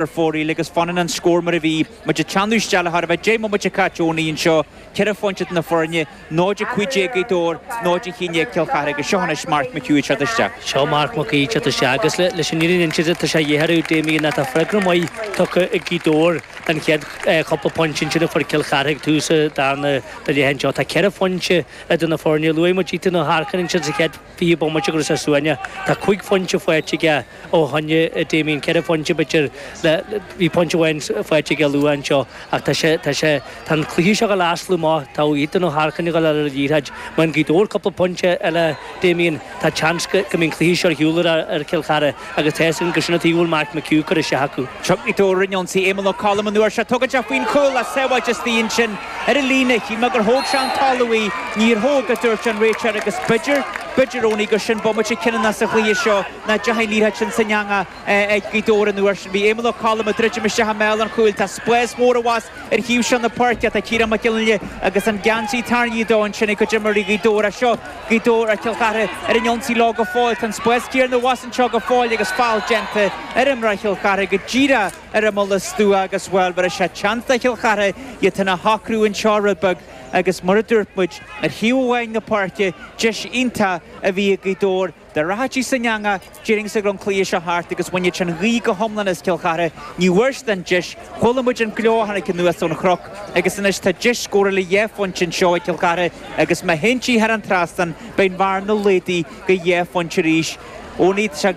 ar fóraoil agus fanann an scór mar a bhí, muid ag teannadh isteach le thar a bheith deich mbomaite caite óna dhéin seo, ceithre phointe idir na foirne, 0 15 ag Gaoth Dobhair, 0 11 ag Cill Charthaigh. Agus seo anois Mark McHugh ag teacht isteach. Seo Mark McHugh ag teacht isteach agus leis an fhírinne a insint tá sé a dhéarthar ag Damien ná tá freagra maith tugtha ag Gaoth Dobhair don chéad chúpla pointe ansin a fuair Cill Charthaigh ag tús an darna leath anseo. Tá ceithre phointe idir na foirne. Luaigh muid Ethan Ó hEarcáin ansin sa chéad. fiche bomaite go raibh sé suaimhneach, tá cúig phointe faighte aige ó shoin a Damien, ceithre phointe b'fhéidir le, bhí pointe amháin faighte aige luath anseo ach tá sé, tá sé, tá an cluiche seo dá leaslú má tá Ethan Ó hEarcáin ag dul ar an liathróid, má fhaigheann Gaoth Dobhair cúpla pointe eile Damien, tá seans go mbeidh an cluiche seo ar shiúl ar Chill Chartha. agus tá a fhios againn gur sin tuige a bhfuil Mark McHugh curtha isteach acu. Gaoth Dobhair ar an ionsaí Éamonn Ó Colm an uair seo. Tugann sé faoin chúl ach sábháilte istigh ansin ar an líne. Shíl mé gur thóg sé den talamh í. Níor thóg, a dúirt an réiteoir agus b'fhéidir, b'fhéidir Owenie gur sin bomaite cinniúna insa chluiche seo nach deachaidh an iarracht sin san eangach ag Gaoth Dobhair an uair sin. Bhí Éamonn Ó Colm ag druidim isteach i mbéal an chúil. Tá spás mór abhus ar thaobh seo na páirce. Tá Ciarán Mac Fhionnghaile agus an geansaí tarraingthe de ansin ag cuid d'imreoirí Ghaoth Dobhair ach seo Gaoth Dobhair ar Chill Chartha ar an ionsaí leo go fóill. Tá an spás céanna abhus anseo go fóill agus feall déanta ar imreoir Chill Chartha go díreach ar imeall an stua agus, bhuel, bhéarfaidh sé seans do Chill Chartha iad féin a shocrú anseo rud beag agus mar a dúirt muid ar thaobh amháin na páirce, deis iontach a bhí ag Gaoth Dobhair dá rachadh sí san eangach. Déarfainnse go raibh an cluiche seo thart agus bhainfeadh sé an ghaoth go hiomlán as Cill Chartha. Ní bhfuair siad an deis. Chuala muid an gleo a tháinig anuas ón chnoc agus anois tá deis scóir le dhá phointe anseo ag Cill Chartha agus má théann sí thar an trasnán beidh an bhearna laghdaithe go dhá phointe arís. Owenie, tá sé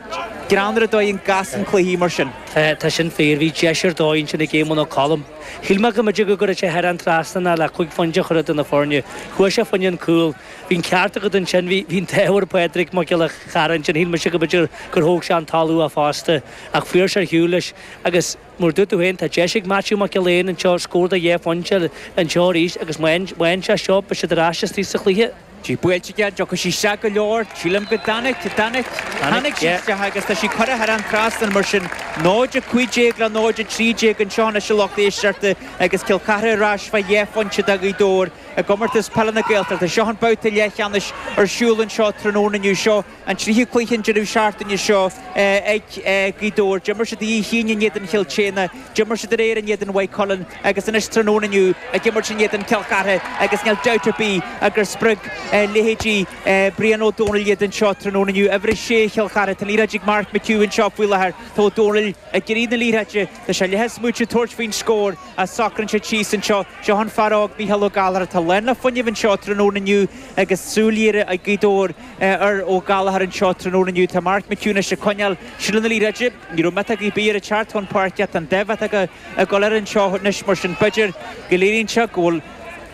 greannmhar an dóigh a gcasann cluichí mar sin. Tá sin fíor. Bhí deis ar dóigh ansin ag Éamonn Ó Colm. Shíl mé go mb'fhéidir go gcuirfeadh sé thar an trasnán ach le cúig phointe a chur idir na foirne. Chuaidh sé fá choinne an chúil. Bhí an ceart agat ansin. Bhí an t-ádh ar Phádraig Mac Giolla Chearra ansin. Shíl mise go mb'fhéidir gur thóg sé den talamh í fosta. Ach fuair sé ar shiúl leis. Agus mar a dúirt tú féin, tá deis ag Maitiú Mac Giolla Eáin ar scór dhá phointe anseo arís agus má fhaigheann sé seo, beidh siad ar ais istigh sa chluiche. Í buailte aige, an dtiocfaidh sí isteach go leor? Sílim go dtáinig, dtáinig, tháinig sí isteach agus tá sí curtha thar an trasnán mar sin. 0-15 le 0-13 anseo anois i gcluiche na sinsear agus Cill Chartha ar ais fá dhá phointe de Ghaoth Dobhair. I gComórtas Peile na Gaeltachta, seo an babhta leathcheannais ar siúl anseo tráthnóna inniu. Seo an tríú cluiche an deireadh seachtaine seo ag Gaoth Dobhair. D'imir siad oíche Aoine in éadan Chill tSéadhna, d'imir siad aréir in éadan Mhaigh Cuilinn agus anois tráthnóna inniu ag imirt in éadan Chill Chartha agus níl dabht ar bith ach gur spreag leithéidí Brian Ó Domhnaill iad anseo tráthnóna inniu. Uimhir a sé Chill Chartha, tá an liathróid ag Mark McHugh anseo faoi láthair, tá Ó Domhnaill ag iarraidh na liathróide, tá sé leath smaoite tabhairt faoin scór, a socraíonn siad síos anseo. Seo an fear óg Mícheál Ó Gallchóir atá lán le fuinneamh anseo tráthnóna inniu agus súil ghéar ag Gaoth Dobhair ar Ó Gallchóir anseo tráthnóna inniu. Tá Mark McHugh anois ag coinneáil seilbh na liathróide. Ní raibh Meta Gui Bia ritearth chun páirce. Tá an daimh ag dul air anseo anois mar sin b'fhéidir go léiríonn sé go bhfuil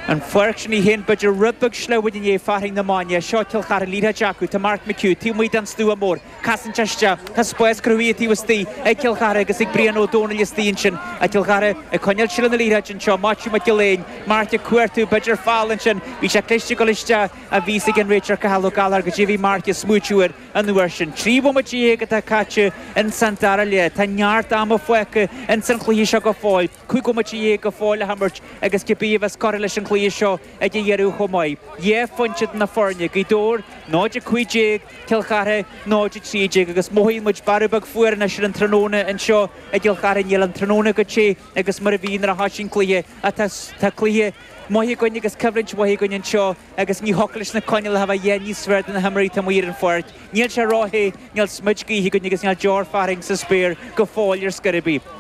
an pháirc sin í féin b'fhéidir rud beag sleamhain i ndiaidh fearthainn na maidne. Seo Cill Charthaigh liathróid acu. Tá Mark McHugh taobh amuigh den stua mór. casaint isteach. Tá spás cruthaithe taobh istigh ag Cill Chartha agus ag Brian Ó Domhnaill istigh ansin ag Cill Chartha ag coinneáil seilbh na liathróide anseo. Maitiú Mac Giolla Eáin, Mark ag cuartú, b'fhéidir foul ansin. Bhí sé cliste ag dul isteach bhí a fhios ag an réiteoir Cathal Ó Gallchóir caidé a bhí Mark ag smaoitiú air an uair sin. Trí bhomaite dhéag atá caite in san dara leath. Tá neart ama fágtha in san chluiche seo go fóill. cúig bhomaite dhéag go fóill le himirt agus cibé a bheas curtha leis an gcluiche seo ag a dheireadh chomh maith, dhá phointe eadar na foirne, Gaoth Dobhair 0 15, Cill Chartha 0 13, agus mothaíonn muid bearradh beag fuar anois ar an tráthnóna anseo i gCill Chartha. Níl an tráthnóna chomh te agus mar a bhí nuair a thosaigh an cluiche ach tá cluiche maith againn agus coimhlint mhaith againn anseo. agus ní thiocfadh leis na coinníollacha a bheith a dhath níos fearr do na himreoirí atá amuigh ar an pháirc. Níl sé róthe, níl smid gaoithe againn agus níl deor fearthainn sa spéir go fóill ar scor ar bith.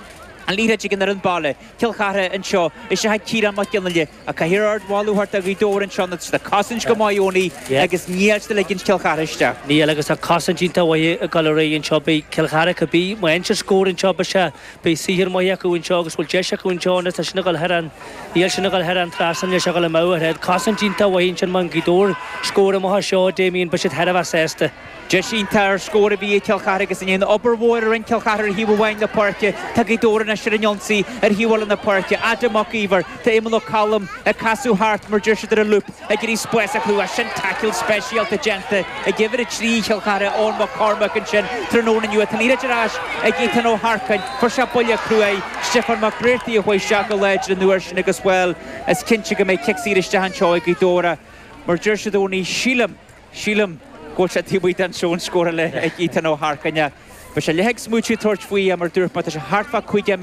An liathróid ag an fhoireann baile, Cill Chartha anseo, is ea Ciarán Mac Gionaille, a caithfear ardmholadh a thabhairt do Ghaoth Dobhair anseo nó tá siad ag cosaint go maith Owenie agus níl siad ag ligint Cill Chartha isteach. Níl, agus tá cosaint iontach mhaith ag dul ar aghaidh anseo. Beidh Cill Chartha, cibé aon chance a scór anseo, beidh sé Beidh saothar maith acu anseo agus bhfuil deis acu anseo anois tá sin a dhul thar an, níl sin a dhul thar an trasnan, níl sé a dhul amach ar thread. Cosaint iontach mhaith ansin má fhaigheann Gaoth Dobhair scór amach as seo, Damien beidh siad thar a bheith sásta. Deis iontach ar scór a bhí ag Cill Charthaigh agus i ndiaidh an obair mhóir a rinne Cill Charthaigh ar thaobh amháin na páirce, tá Gaoth Dobhair anois ar an ionsaí ar thaobh eile na páirce. Adam Mac Iomhair, tá Éamonn Ó Colm ag casadh thart mar deir siad ar an loop. ag iarraidh spás a chruthú ansin taicil speisialta déanta ag Uimhir 3 Chill Chartha, Eoin Mac Cormaic ansin tráthnóna inniu. Tá an liathróid ar ais ag Ethan Ó hEarcáin. Fuair sé buille cruaidh Stiofán Mac Breartaigh a chuaigh isteach go láidir an uair sin agus, bhuel, is cinnte go mbeidh cic saor isteach anseo ag Gaoth Dobhair mar deir siad Owenie, sílim, sílim go bhfuil sé taobh amuigh den zone scórála ag Ethan Ó hEarcáin. Beidh sé leath ag smaoitiú ag tabhairt faoi ach mar dúirt mé tá sé thart fá 50